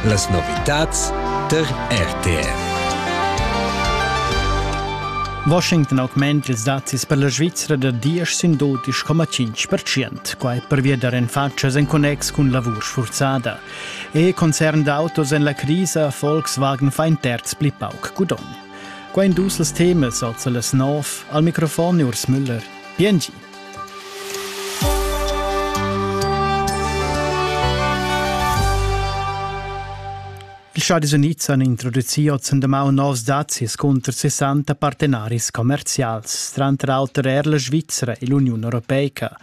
Las novitads tar RTF. Washington augment ils dazis per la Svizra da 10 sin dotisch coma 5%, quai pervia da renfatschas en connex cun lavur sfurzada. E concern d'autos en la crisa Volkswagen fa in terz pli pauc gudogn. Qua in dus els temas, also las nov, al microfon Urs Müller. Bien Ils Stadis Unids han introducì ozendi novs dazis cunter 60 partenaris commerzials, tranter auter er la Svizzera e l'Uniun Europeica.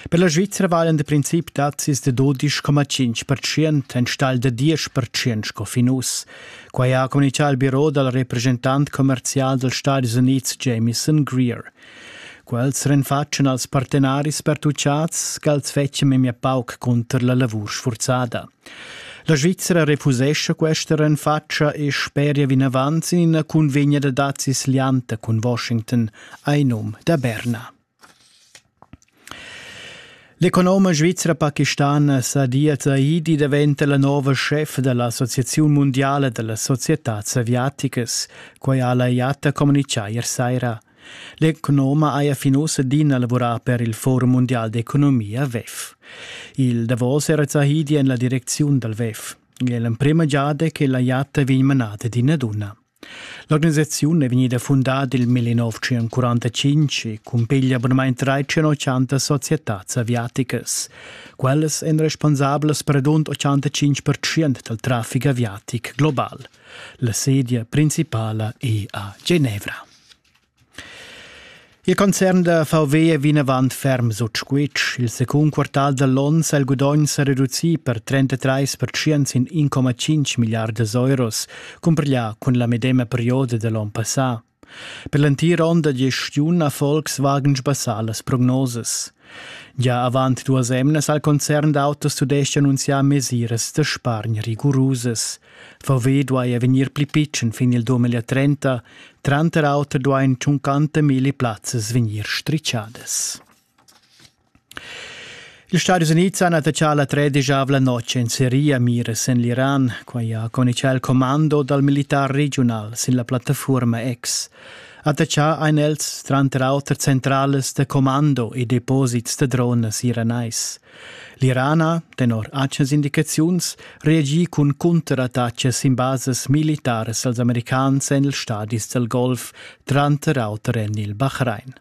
Per la Svizzera valan da princip dazis da 12,5% enstagl da 10% sco fin uss. Quai ha communitgà il biro dal representant commerzial dals Stadis Unids Jamieson Greer. Quels renfatschan als partenaris pertuchats ch'els fetschan memia pauc cunter la lavur sfurzada. La Svizra refusescha questa renfatscha e speria vinavant sin ina cunvegna da dazis lianta cun Washington ai num da Berna. L'economa svizra pakistana Sadia Zaidi daventa la nova chef da l'Associaziun mundiala da las societads aviaticas. Quai ha la IATA communitgà ier saira. L'economa haja fin uss adina lavurà per il Forum mundial d'economia WEF. Il davos era Zahidi en la direcziun dal WEF. È l'emprima giada che la jatta vegn manata d'ina duna. L'organisaziun è vegnida fundada nel 1945 e cumpiglia abunadamente 380 societàs aviaticas. Quellas èn responsablas per rund 85% dal traffic aviatic global. La sedia principala è a Genevra. Il concern da VW è vinavant ferm sut squitsch. Il secund quartal da l'onn ha il gudogn sa reducì per 33 percent sin 1,5 milliardas euros, cumpiglià cun la medema perioda da l'onn passà. Per l'entir onn da gestiun ha Volkswagen sbassà las prognosas. Gia avant duas emnas ha il concern d'autos tudestg annunzià mesiras da spargn rigurusas. Verweh duai er vegnir pli pitschen fin il 2030, tranter auter duain tschuncanta milli plazzas vegnir strischadas. Ils Stadis Unids han attachà la tredisavla notg en Siria miras en l'Iran, quai ha conichà il commando dal militar regional sin la plattafuorma X. Attachà ein els tranter auter centralas da commando e deposits da dronas iranais. L'Irana, tenor atgnas indicaziuns, reagi cun cunterattachas sin basas militaras als americans en ils stadis dal Golf, tranter auter en il Bahrain.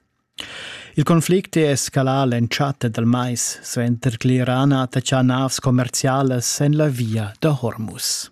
Il conflict è escalà l'entschatta dal mais suenter che l'Iran ha attaccà navs commerzialas en la via da Hormuz.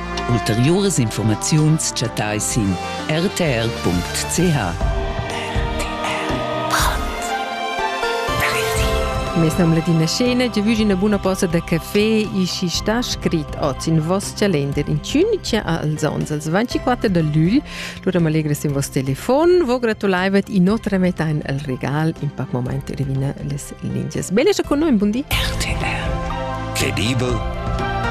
Ulteriuras informaziuns chattai sin rtr.ch. Mes nom ladina scena già vugi una buona posta da caffè e ci sta scrit oz in vos calender in ciunica als ons als 24 del lügl lura m'allegres in vos telefon vo gratulaivet in otra metà in al regal in pac moment revina les lingias bene sta con noi buondì RTR Credibel